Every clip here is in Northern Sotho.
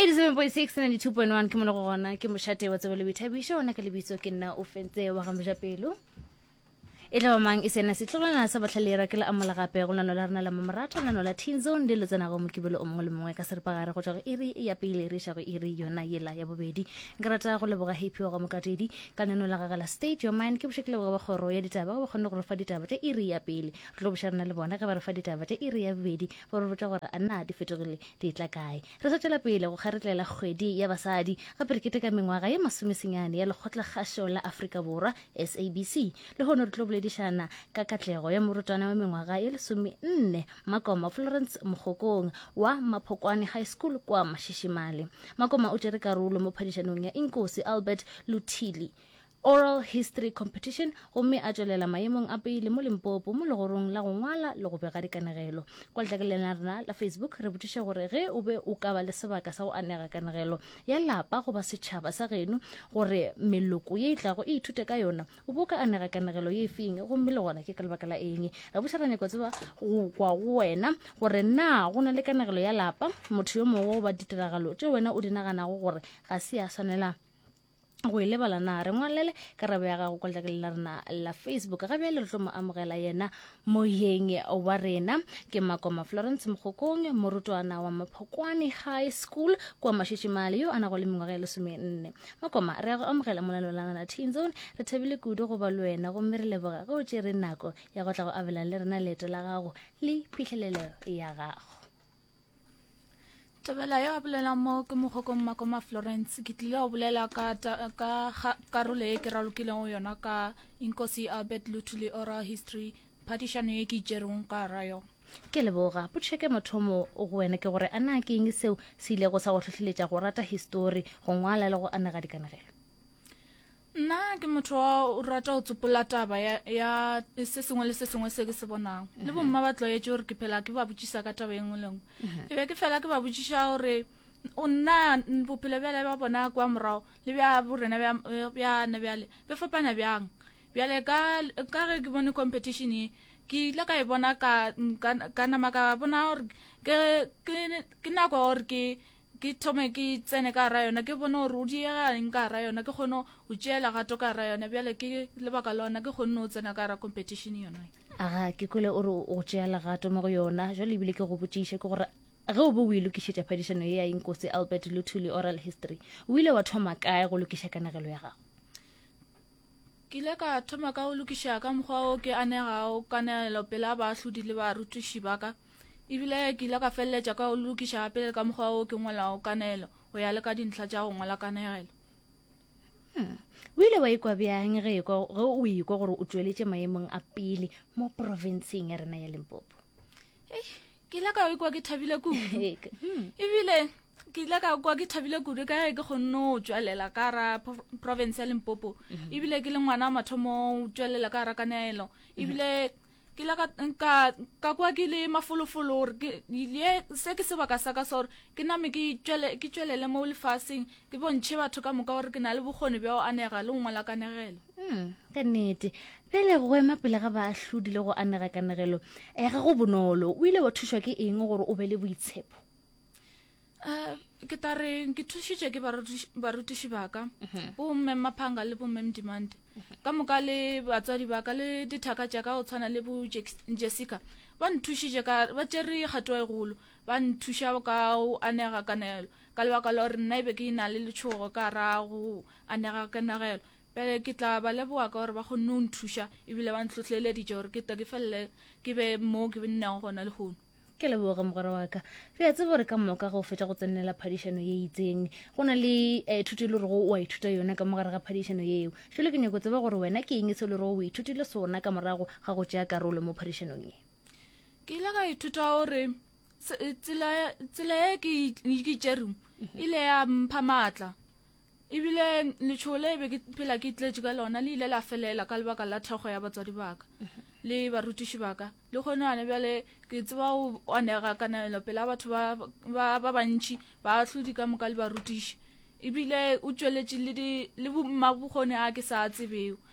eighty-seven point six ninety-two point one ke mo le go gona ke mošate wa tsebo le boithabišo ona ka lebitso ke nna o fentse wa ga moja pelo e tla ba mang e sena setlogolwana sa batlhalera ke la amola gape go lano la rena la mamoratho lano la teen zone le lo tsenago mokibelo o mongwe le mongwe ka seripagare go tswa go iri ya pele re iša go iri yona yela ya bobedi ke rata go leboga happy wa ga mokatedi ka neno la gagala state your mind ke boše ke leboga ba kgoro ya ditaba ba kgonne go re fa ditaba tša iri ya pele Re tlo bošarana le bona ge ba re fa ditaba tša iri ya bobedi, ba re botša gore a na di fetogile di etla kae. Re sa tšwela pele go kgaretlela kgwedi ya basadi, gape re keteka mengwaga ye masomesenyane ya Lekgotlakgašo la Afrika Borwa, SABC. Lehono re tlo boledišana ka katlego ya morutwana wa mengwaga ye lesomenne, Makoma Florence Mokgokong wa Maphokwane High School kwa Mashishimale. Makoma o tšere karolo mo phadišanong ya Inkosi Albert Luthili. Oral History Competition, gomme a tšwelela maemong a pele mo Limpopo mo legorong la go ngwala le go bega dikanegelo. Kwa letlakaleng la rena la Facebook re botšiše gore ge o be o ka ba le sebaka sa go anega kanegelo ya lapa goba setšhaba sa geno gore meloko ye e tlago e ithute ka yona, o be o ka anega kanegelo ye feng gomme le gona ke ka lebaka la eng? Re boša ra nyako tseba go kwa go wena gore na go na le kanegelo ya lapa, motho yo mongwe goba ditiragalo tše wena o di naganago gore ga se ya swanela go e lebala na re ngwalele karabo ya gago kwa letlakele la rena la facebook ga bjale re tlo mo amogela yena moyeng wa rena ke makoma florence mokgokong morutwana wa maphokwane high school kwa mashitšimale yo a nago le mengwaga ya lesomenne makoma re ya go amogela monalo la rena teen zone re thabile kudu go ba le wena gomme re leboga ge o tšere nako ya go tla go abelang le rena leeto la gago le phitlhelelo ya gago tabela yo a bolelang mo ke mogokong makoma florence ke tlile go bolela ka, ka karolo e ke ralokileng go yona ka inkosi albert lutuli oral history phadišano ye ke itšerong ka ra yo ke leboga potšheke mothomo go wena ke gore a na ke eng seo se ilego sa go tlhohleletša go rata histori go ngwala le go anega dikanegelo Nna ke motho wa o rata go tsopola taba ya, ya se sengwe le se sengwe se ke se bonago le bomma ba tlwaetse gore ke phela ke ba botsisa ka taba e nngwe le nngwe ke be ke fela ke ba botsisa gore o nna bophelo bjale ba bona kwa morago le bja borena bjana bjale be fapana bjang bjale ka ge ke bone competition e ke ile ka e bona ka nama ka bona gore ke nako gore ke ke thome ke tsene ka gara yona ke bone gore o diegaeng ka gara yona ke kgone go tšea legato ka gara yona bjale ke lebaka lona ke kgonne o tsena ka gara competition yona aga ke kole o re o tšea legato mo go yona jale ebile ke go botšiše ke gore ge o be o e lokišetša phadišano ye ya inkosi albert luthuli oral history o ile wa thoma kae go lokiša kanegelo ya gago Ke ile ka thoma ka go lokiša ka mokgwa o ke anegago kananelo pela baahlodi le barutiši ba ka, e bile ke ile ka feleletša ka go le lokiša gape le ka mokgwa o ke ngwalago kananelo go ya le ka dintlha tša go ngwala kanegelo. Hmm. O ile wa ikwa bjang ge o ikwa gore o tšweletše maemong a pele mo profenseng ya rena ya Limpopo? Eish, ke ile ka ikwa ke thabile kudu hmm. ebile ke ile ka kwa ke thabile kudu ka ge ke kgonne go tswelela ka ra province ya limpopo mhm. ebile ke le ngwana wa mathomo o tswelela ka ra kanelo mhm. ebile ke la ka kwa ke le mafolofolo gore se ke sebaka sa ka sa gore ke name ke tswelele mo lefaseng Ke bontšhe batho ka moka gore ke na le bokgoni bja go anega le go ngwala kanegelo. Hmm, ka nnete pele go ema pele ga baahlodi le go anega kanegelo e ga go bonolo o ile wa thušwa ke eng gore o be le boitshepo um ke ta re ke thušitše ke barutiši baka mhm. bo mme maphanga le bo mme mdimante mhm. ka moka le batswadi baka le dithaka tša ka go tshwana le bo jessica ba nthušitše ka ba tšere kgato e golo ba nthuša ka go anega kanegelo Ka lebaka la gore nna e be ke e-na le letšhogo ka ra go anega ga kenagelo, bjale ke tla ba leboga ka gore ba kgonne go nthuša e bile ba ntlhohleleditše gore ke tle ke felele ke be moo ke nnego gona lehono. Ke leboge mogwera wa ka. Re a tseba gore ka moka ga o fetša go tsenela phadišano ye itseng, go na le eh, thuto e le rego o a ithuta yona ka mo gare ga phadišano yeo. Šole ke nyoko tseba gore wena ke eng se e le rego o ithutile sona ka morago ga go tšea karolo mo phadišanong ye. Ke ile ka ithuta gore tsela e ke itšere e ile ya mpha maatla ebile letšhogo le be ke phela ke tletše ka lona le ile la felela ka lebaka la thekgo ya batswadi baka le barutiši baka le kgone gone bjale ke tseba go anega kananelo pela batho ba bantši ba hlodi ka moka le barutiši ebile o tšweletše le mmabokgone a ke sa tsebeo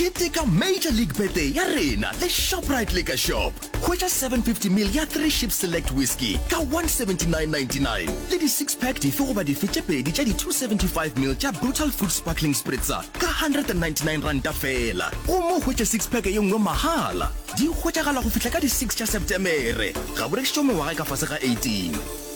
Keteka Major League Birthday ya rena le Shoprite Liquor Shop. Hwetša 750 ml ya Three Ship Select Whisky ka 179.99 le di six pack dife goba dife tše pedi tša di 275 ml tša Brutal Fruit Sparkling Spritzer ka 199 ranta feela gomme o hwetše six pack ye nngwe mahala. Di hwetšagala go fihla ka di six tša Setemere. Ga bo rekišitšwe mengwaga e ka fase ga 18.